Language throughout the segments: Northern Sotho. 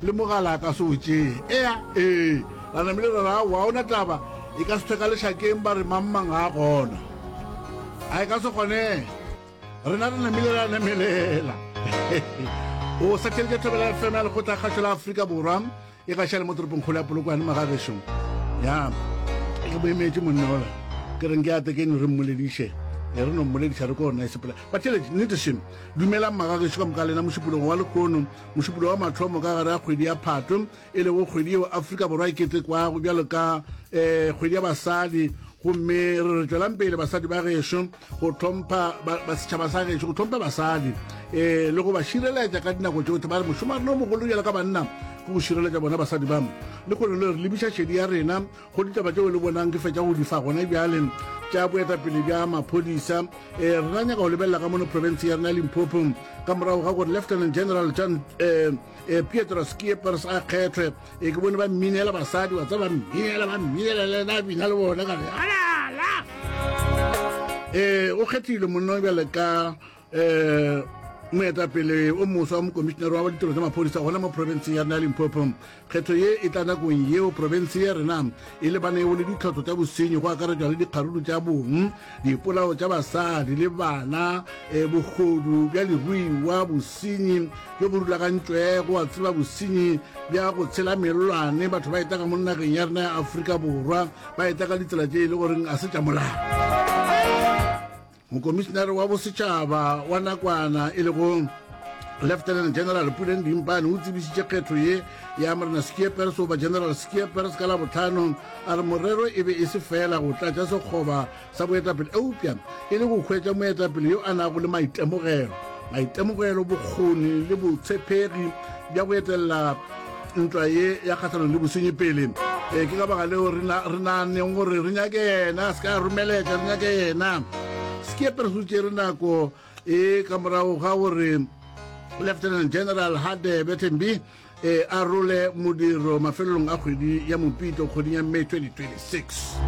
Le mogala a ka se o tšee. Ea, ee. Ra namile ra re, Aowa, ga ona taba, e ka se thwe ka lešakeng ba re mang-mang ga a gona. A e ka se kgonege. Rena re namile ra namelela. O satheletša Thobela FM ya Lekgotla Kgašo la Afrika Borwa, e gaša le mo toropongkgolo ya Polokwane mo gagešo. Ya, ke boemetše monna ola. Ke reng ke ate ke no re mmolediše. E re no mmolediša re ko nna e sepela. Batheletši, nnete šem. Dumelang magagešo ka moka lena mošupologo wa lehono. Mošupologo wa mathomo ka gare ga kgwedi ya Phatwe, e lego kgwedi yeo Afrika Borwa e ketekwago bjalo ka e, kgwedi ya basadi, gomme re re tšwelang pele basadi ba gešo go tlhompha ba, ba setšhaba sa gešo go tlhompha basadi e, le go ba šireletša ka dinako tšohle ba re mošomarena o mogolo bjalo ka banna go go šireletša bona basadi ba le kgone le re lebiša šedi ya rena Go ditaba tšeo le bonang ke fetša go di fa gona bjale tša boetapele bja maphodisa, e, re na nyaka go lebelela ka mono profense ya rena Limpopo ka morago ga gore Lieutenant General John e, e, Pietro Schiepers a kgethwe. E, ke bone ba mminela basadi wa tsa ba mminela ba mminela le na bina le bona ka re alala e, o kgethilwe monna bjale ka um moetapele o moswa wa mokomišinare wa ditiro tsa maphodisa gona mo profenseng ya rena ya limpopo kgetho ye e tla nakong yeo profense ya rena e lebanego le ditlhotlho tsa bosenyi go akaretšwa le dikgaruru tša bong dipolao tša basadi le bana um bogodu bja leruiwa bosenyi jo bo rulagantšwego wa tseba bosenyi bja go tshela melwane batho ba etaka mo nageng ya rena ya aforika borwa ba etaka ditsela tše e le goreng a se tša molao Mokomišinare wa bosetšhaba wa nakwana e lego Lieutenant General Puleng Dimpane o tsebišitše kgetho ye ya Morena Skeepers goba General Skeepers ka Labotlhano a re morero e be e se fela go tlatša sekgoba sa boetapele eupša e le go hwetša moetapele yo a nago le maitemogelo maitemogelo bokgoni le botshepegi bja go etelela ntwa ye ya kgahlanong le bosenyi pele. Ee, ke ka baka leo re na, re naganeng gore re nyake Yena, se ka romeletša, re nyake Yena. Sekepe re se tšere nako e ka morago ga gore Lieutenant General Hadebe Thembi e arole modiro mafelelong a kgwedi ya Mopito kgweding ya May 2026.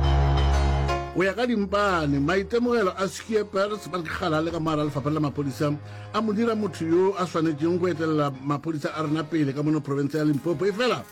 Go ya ka dimpane, maitemogelo a Skeepers ba re ke galale ka mo gare ga lefapha la maphodisa a mo dira motho yo a swanetšeng go etelela maphodisa a rena pele ka mono profense ya limpopo efela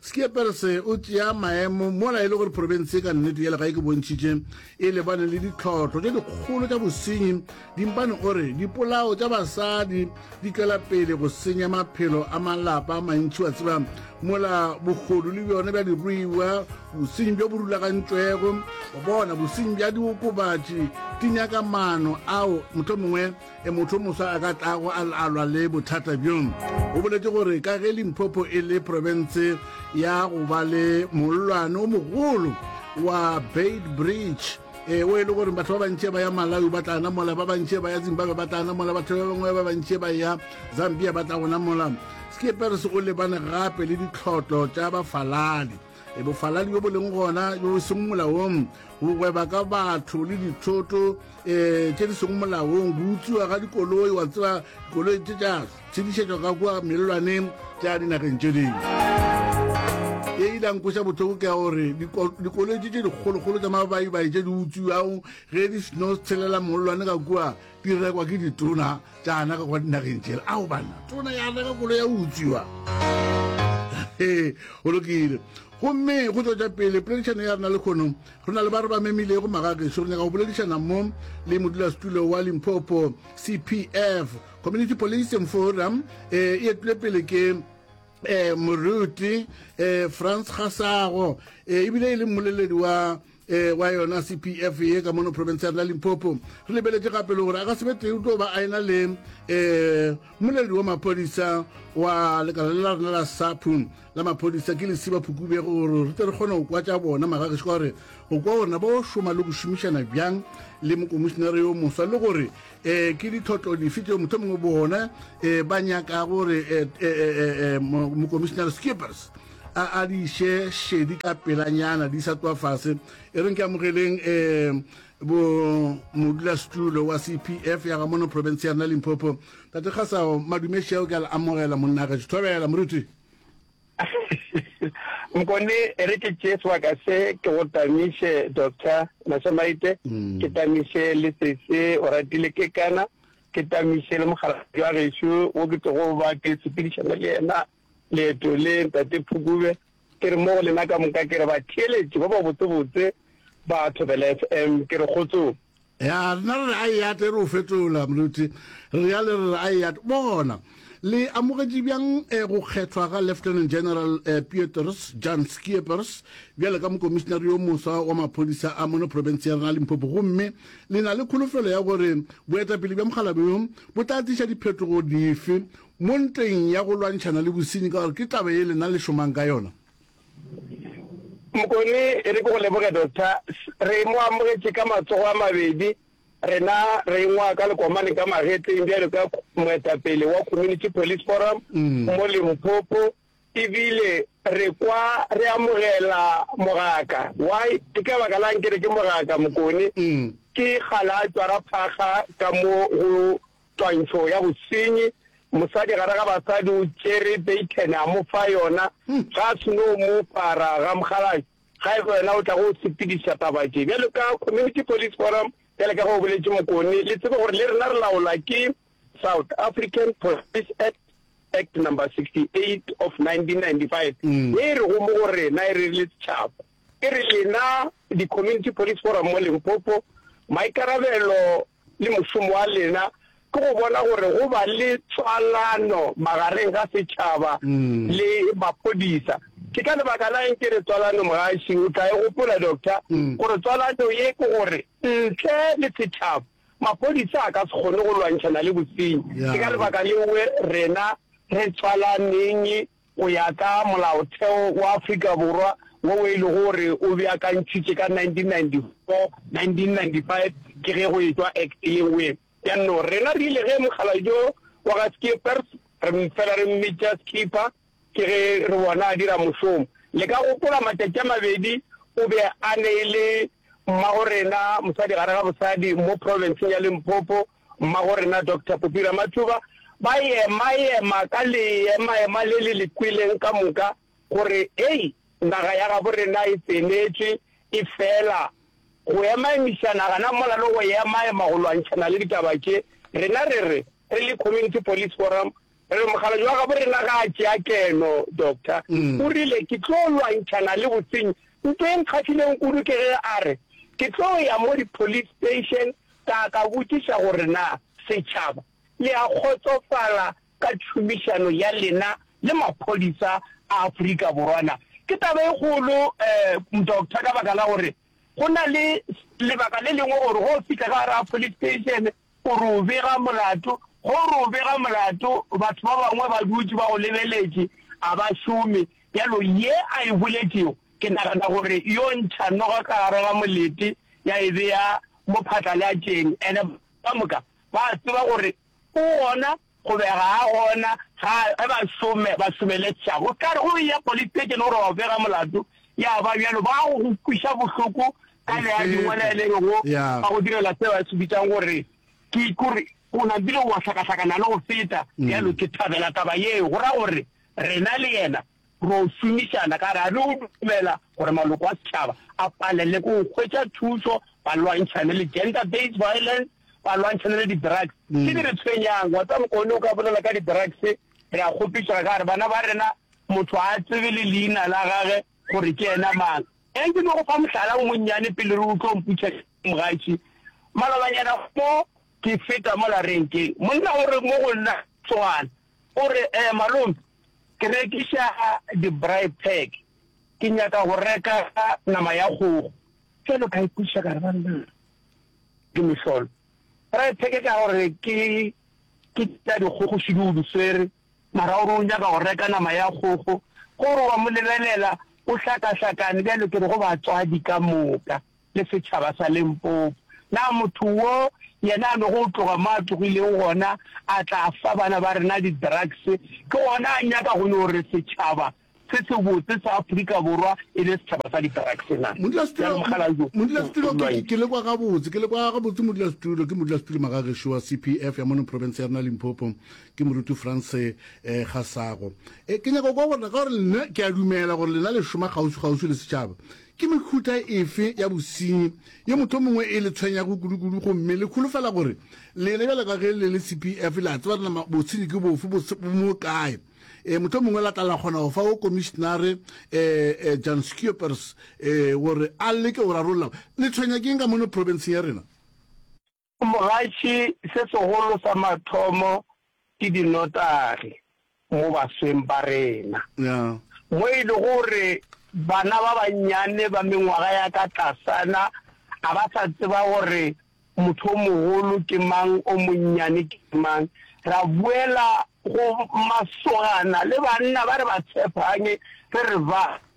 skieperse o tšea maemo mola e le gore profense ka nnete ya legae ke bontšhitše e lebane le ditlhotlho tše dikgolo tša bosenyi dimpane o re dipolao tša basadi di tšwela pele go senya maphelo a malapa a mantši wa tseba mola bogodu le bjone bja diruiwa bosenyi bjo bo rulagantšwego bona bosenyi bja diokobatši di nyaka maano ao motlho mongwe e motho moswa a ka tlago a alwa le bothata bjo. O boletše gore ka ge Limpopo e le profense ya go ba le mollwane o mogolo wa Beitbridge, e o e le gore batho ba bantši ba ya Malawi ba tla namola, ba bantši ba ya Zimbabwe ba tla namola, batho ba bangwe ba bantši ba ya Zambia ba tla go namola. Skeepers o lebane gape le ditlhotlo tša bafaladi. e bofaladi bjo bo leng gona bjo e seng molaong go gweba ka batho le dithoto um tše di seng molaong go utsiwa ga dikoloi wa tseba dikoloi tše tša tshedišetšwa ka kua melelwaneng tša dinageng tše dingwe ye e dankweša botlhoko ke ya gore dikoloi tše tše dikgolokgolo tša mabaibai tše di utsiwago ge di seno tshelela mollwane ka kua di rekwa ke ditona tša anaka kwa dinageng tšela ao banna tona ya reka kolo ya utswiwa ee go lokile gomme go tswetša pele poledišano ya rena le kgono re na le ba re ba memilego magakešo re nyaka go boledišana mo le modulasetulo wa limpopo cpf community policing forum e e etile pele ke um moruti um france gasago um ebile e le mmoleledi wa e wa yona cpf ye ka mono province ya rena limpopo re lebeletse gape le gore a ka sebetee o tlo ba a ena le um moleledi wa maphodisa wa lekala le la rena la sapu la maphodisa ke lesiba phukubego gore re tle re kgone go kwa tša bona magagešo ka gore go kwa gorena ba o šoma le go šomišana bjang le mokomišenare yo moswa le gore um ke ditlhotlo dife tšeo motho mongwe bona um ba nyaka gore mokomišenare skippers a a di iše šedi ka pelanyana di sa tloa fase e reng ke amogeleng um bo modulasetulo wa cpf ya ga mono province ya rena limpopo tate kgasao madumeši ao ke a le amogela monnageso thobela moruti nkone e re ke tšee sebaka se ke go tamiše doctor masemaite mm. ke tamiše le sese o ratile ke kana ke tamiše le mogalajwa gešo o ke tlogo ba ke sepedišana le yena Leeto le, Ntate Phukube, ke re mo go lena ka moka, ke re batheeletši ba babotsebotse ba Thobela FM, ke re kgotsong. Ya, rena re re a eate, e re o fetola, Moruti. Re reale re re a eate. Bona, le amogetše bjang eh, go kgethwa ga Lieutenant General eh, Piotrs Jan Schiepers bjale ka mokomišinare yo moswa wa maphodisa a mono profense ya rena Limpopo, gomme le na le kholofelo ya gore boetapele bja mokgalabjo bo tla tliša diphetogo dife Mo ntweng ya go lwantšhana le bosenyi, ka gore ke taba ye lena le šomang ka yona. Mokone, e re ke go leboge, Doctor. Re mo amogetše ka matsogo a mabedi, rena re ingwaa ka lekomane ka magetleng bjalo ka moetapele wa Community Police Forum mo Limpopo. E bile re kwa re amogela mogaka. Why? Ke ka baka la'ng ke re ke mogaka, Mokone? Ke ga la tšwara phaga ka mo go twantšho ya bosenyi. Mosadi gare ga basadi o tšere beitene a mo fa yona. Ga a seno mo para, Ramgalakh, ga e ba wena o tla go sepediša taba tše. Bjalo ka Community Police Forum, bjalo ka ge o boletše, Mokone, le tsebe gore le rena re laolwa ke South African Police Act, Act number 68 of 1995, ye e rego mo go rena e re le setšhaba, e re lena di-Community Police Forum mo Limpopo, maikarabelo le mošomo wa lena ke go bona gore go ba le tswalano magareng ga setšhaba le maphodisa. Ke ka lebaka la eng ke re tswalano, Mogaši o tla e gopola Doctor, gore tswalano ye ke gore ntle le setšhaba Maphodisa a ka se kgone go lwantšhana le bosenyi. Ke ka lebaka leo rena re tswalaneng go ya ka Molaotheo wa Afrika Borwa wo e lego gore o beakantšhitšwe ka 1994, 1995 ke ge go etšwa Act ye nngwe ya no. Rena re ile ge Mokgalabje wa ga Skeepers, re mmfela re mmitša Skipper. Ke ge re bona a dira mošomo. Le ka gopola matšatši a mabedi o be a neile Mmagorena, mosadi gare ga bosadi, mo profenseng ya Limpopo, Mmagorena Doctor Popi Ramathuba, ba ema-ema ka leema-ema le le le kweleng ka moka gore, Hei, naga ya gabo rena e tsenetšwe, e fela. Go ema-emišana gana mola le go ema-ema go lwantšhana le ditaba tše, rena re re, re le Community Police Forum, Re mokgalabje wa gabo rena ga a tšea keno, Doctor. O rile, Ke tlo lwantšhana le bosenyi. Nto e nkgahlileng kudu ke ge a re, Ke tlo ya mo di-police station ka ka botšiša gore na setšhaba le a kgotsofala ka tšhomišano ya lena le maphodisa a Afrika Borwa na. Ke taba e kgolo, um, Doctor, ka baka la gore go na le lebaka le lengwe gore ge o fihla ka gare ga police station, Gore o bega molato, Gore o bega molato, batho ba bangwe ba dutše ba go lebeletše, a ba šome. Bjalo ye a e boletšego, ke nagana gore yo ntšha noga ka gare ga molete ya e bea mo phatlalatšeng, and ba moka ba a tseba gore o gona. Go bega ga gona ga ge ba some ba someletšago o ka re go ya politekene gore wa bega molato ya ba bjalo ba go go kwiša bohloko ka le ya dingwala e le go ba go direla se ba se bitsang gore ke ikore o na bile wa hlakahlakana le go feta bjalo ke thabela taba yeo go ra gore rena le yena Ro šomišana ka ra re o dumela gore maloko a setšhaba a palelele ko go hwetša thušo, ba lwantšhane le gender based violence, ba lwantšhane le di-drugs. Tše di re tshwenyang, wa tseba mokaone o ka bolela ka di-drugs, re a kgopišega ka re bana ba rena motho a tsebe le leina la gage gore ke yena mang. Eng ke no go fa mohlala o monnyane pele re utlwa mputšha mogatši. Malobanyana mo ke feta mola renkeng, monna o re mo go nna Tsowana O re, Eh, malome, ke rekiša di-braai pack. Ke nyaka go reka nama ya kgogo. Bjalo ka ipotsiša ka re, Banna, ke mehlolo. Braai pack ka gore ke, ke tša dikgogo šidi o di swere, mara o re o nyaka go reka nama ya kgogo. Gore wa mo lebelela o hlakahlakane bjalo ke re go batswadi ka moka. le setšhaba sa Limpopo. Na motho wo yena a bego o tloga mo a tlogilego gona a tla fa bana ba rena di-drugs, ke gona a nyaka go no re setšhaba se sebotse sa Afrika Borwa e be setšhaba sa di-drugs na? Bjalo Mokgalabje o Modulasetulo, ke le kwa gabotse, ke le kwa gabotse Modulasetulo. Ke Modulasetulo Magagešo wa CPF ya mono profense ya rena Limpopo. Ke Moruti Frans Gasago. Ke nyaka go kwa gore, ka gore nna ke a dumela gore lena le šoma kgauswi-kgauswi le setšhaba. Ke mehuta efe ya bosenyi ye mohlomongwe e le tshwenyago kudukudu gomme le holofela gore lena bjalo ka ge le le CPF le a tseba nama bosenyi ke bofe bo mo kae? E, mohlomongwe la tla la kgona go fa wo Komišenare e, e, Jan Schiepers e, gore a leke go rarolla. Le tshwenya ke eng ka mono profenseng ya rena? Mogatši se segolo sa mathomo ke dinotagi mo basweng ba rena, mo e lego gore bana ba bannyane ba mengwaga ya ka tlasana ga ba sa tseba gore motho o mogolo ke mang, o monnyane ke mang. Ra boela go masogana le banna ba re ba tshephagne re re ba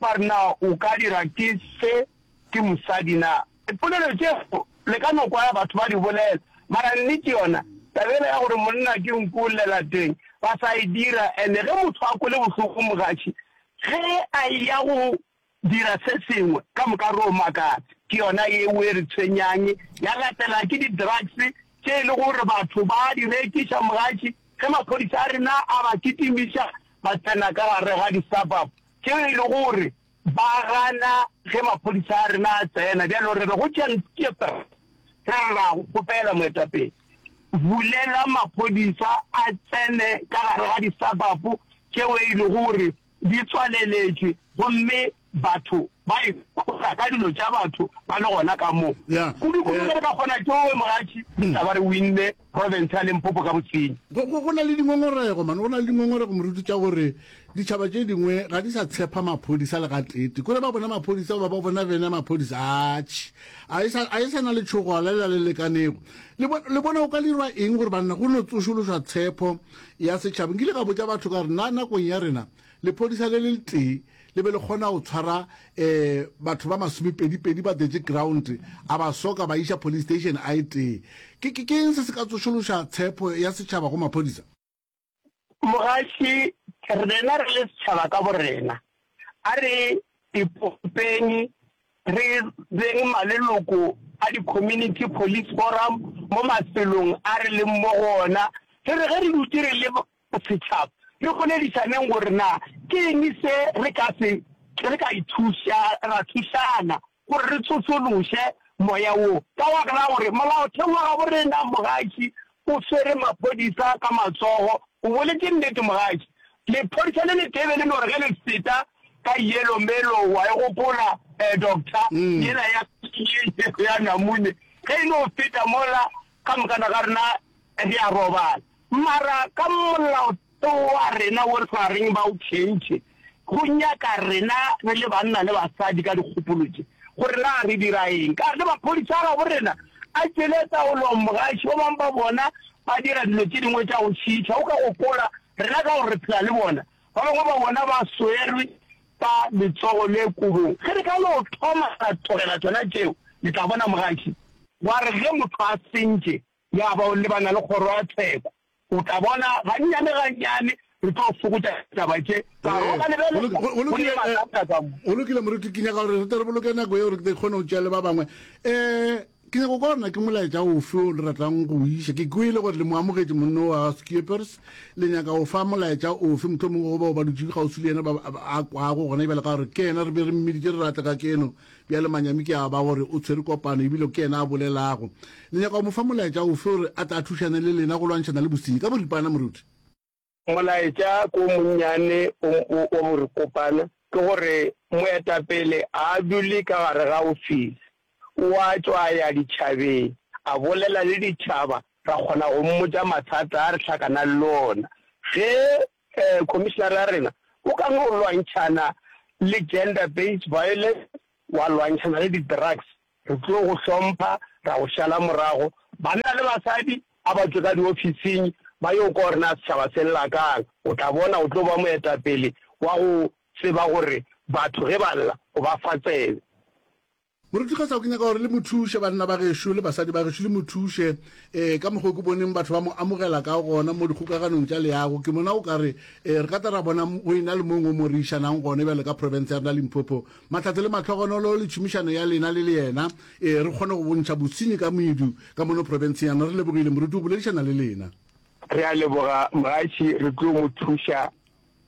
Ba re, Na o ka dira ke fe ke mosadi na? Dipolelo tšeo le ka no kwa batho ba di bolela, mara nnete yona, taba yela ya gore monna ke nku o llela teng, ba sa e dira. And ge motho a kwele bohloko mogatši, ge a eya go dira se sengwe, ka moka re yo makatsa. Ke yona yeo e re tshwenyang, ya latela ke di-drugs tše e lego gore batho ba a di rekiša. Mogatši, ge maphodisa a rena a ba kitimiša, ba tsena ka gare ga di-suburb, Tšeo e lego gore ba gana ge maphodisa a rena a tsena, bjalo re be go tšea Ntsieper ra re ra go kgopela moetapele, bulela maphodisa a tsene ka gare ga disabapu tšeo e lego gore di tswaleletšwe gomme batho ba ikhola ka dilo tša batho ba le gona ka moo. Kudukudu ge re ka kgona tšoo, mogatši, re tla ba re winne. profense ya Limpopo ka botsenya. Go, go, go na le dingongorego, man, go na le dingongorego, moruti, tša gore ditšhaba tše dingwe ga di sa tshepa maphodisa le gateete. Kore ba bona maphodisa goba ba bona bene maphodisa, atšhe, a e sa, a e sa na le tšhogola lela le lekanego. Le, bo, le bona go ka dirwa eng gore banna go no tsošološwa tshepho ya setšhaba. Nkile ka botša batho ka re, na nakong ya rena, lepodisa le le letee le be le kgona go tshwara um batho ba masomepedipedi ba detse ground a ba soka ba iša police station a e tee ke ke- ke eng se se ka tsošološa tshepo ya setšhaba go maphodisa mogaši rena re le setšhaba ka borena a re ipopeng re beng maleloko a di-community police forum mo mafelong a re leng mo go ona re re ge re dutše re le Go setšhaba, re boledišaneng gore na ke eng se re ka se re ka ithuša ra thušana gore re tsošološe moya wo. Ka baka la gore Molaotheo wa gabo rena, Mogaši o swere maphodisa ka matsogo. O boletše nnete, Mogaši. Lephodisa le letebe le no re ge le feta ka Yellow Mellow, wa e gopola, eh, Doctor, yela ya ya namune, ge e no feta mola Ka moka na ga rena re a robala, mara ka Molaotheo wa rena wo re sa reng ba o tšhentšhe, go nyaka rena re le banna le basadi ka dikgopolo tše gore na re dira eng. Ka ge maphodisa a gabo rena a tšwele taolong, mogaši ba bangwe ba bona ba dira dilo tše dingwe tša go šiiša, o ka gopola rena ka gore re phela le bona Ba bangwe ba bona ba swerwe ka letsogo le kobong. Ge re ka no thoma ra tlogela tšona tšeo, le tla bona mogaši. Wa re ge motho a sentše ya ba o lebana le kgoro ya tsheko, o tla bona gannyane-gannyane re tlo fokotša ditaba tše ka gore o ka lebelela go le mathata ka mo. Go lokile, moruti. Ke nyaka gore re tle re boloke nako yeo re tle re kgone go tšea le ba bangwe. Ke nyaka go kwa gore na ke molaetša ofe o le ratang go o iša. Ke kwele gore le mo amogetše monna wa Schiepers. Le nyaka go fa molaetša ofe, mohlomongwe go bao ba dutše kgauswi le yena ba a kwago gona bjale? Ka gore ke yena re be re mmiditše re re a tle kajeno. Bjale manyami ke a ba gore o tshwere kopano ebile ke yena a bolelago. Le nyaka go mo fa molaetša ofe gore a tle a thušane le lena go lwantšhana le bosenyi? Ka boripana, moruti. Molaetša ke o monnyane wa borikopana, ke gore moetapele a a dule ka gare ga ofisi, o a tšwa a ya ditšhabeng, a bolela le ditšhaba, ra kgona go mmotša mathata a re hlakanang le ona. Ge khomišenare ya rena o ka no lwantšhana le gender-based violence, wa lwantšhana le di-drugs, Re tlo go hlompha, ra go šala morago. Banna le basadi, a ba tšwe ka diofising ba yo kwa gore na setšhaba se lla ka'ng. O tla bona, o tlo ba moetapele wa go tseba gore batho ge ba lla, o ba fa tsebe. Moruti Kgethao, ke nyaka gore le mo thuše, banna ba gešo le basadi ba gešo, le mo thuše eh, ka mokgwa o ke boneng batho ba mo amogela ka gona mo dikgokaganong tša leago. Ke bona o ka re eh, re ka tla ra bona go e na le mong o mo re išanang gone bjale ka profense ya rena Limpopo. Mahlatse le mahlogonolo le tšhomišano ya lena le le yena, ee, re kgone go bontšha bosenyi ka moedu ka mono profenseng yana. Re lebogile, moruti o boledišana le lena. Re a leboga, mogaši, re tlo mo thuša,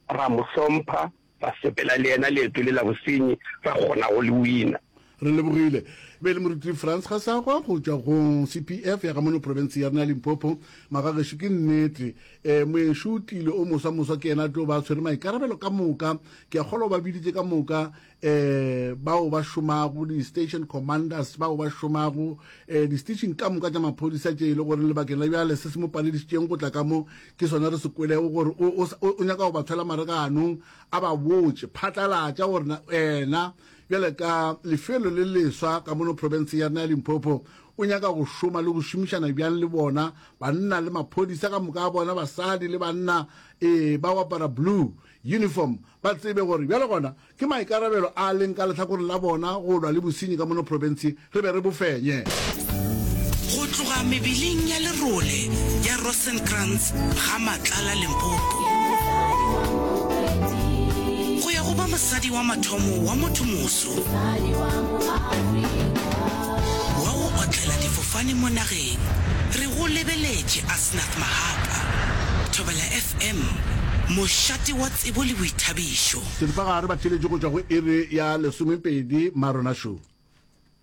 ra mo hlompha, ra sepela le yena leeto le la bosenyi, ra kgona go le wina. Re lebogile. Bjale, Moruti Franz Gassagwa, go tšwa go CPF ya ga mono profenseng ya rena ya Limpopo, magagešo ke nnete, ee, moeng-šotlile o moswa-moswa ke yena a tlo ba a tshwere maikarabelo ka moka ke a kgolwa o ba biditše ka moka um bao ba šomago di-station commanders bao ba šomago um eh, di-station ka moka tša maphodisa tše e le gore lebakeng la bjale se se mo paledišitšeng go tla ka mo ke sone re se kwelego gore o nyaka go ba tshwela mare ka anong a ba botse phatlalatša gore wena bjale ka lefelo le leswa ka mono province ya rena ya limpopo o nyaka go šoma le go šomišana bjang le bona banna le maphodisa ka moka a bona basadi le banna um ba wapara blue uniform ba tsebe gore bjale gona ke maikarabelo a leng ka lehlakoreng la bona go lwa le bosenyi ka mono profenseng re be re bo fenye. Go tloga mebeleng ya lerole ya Rosenkrantz ga Matlala Limpopo go ya go ba mosadi wa mathomo wa motho moso wa go otlela difofane mo nageng, re go lebeletše a Snuff Mahapa, Thobela FM, mošate wa tsebo le boithabišo. Seripagare ba theletše go tšwa go iri ya lesomepedi, Marona Show.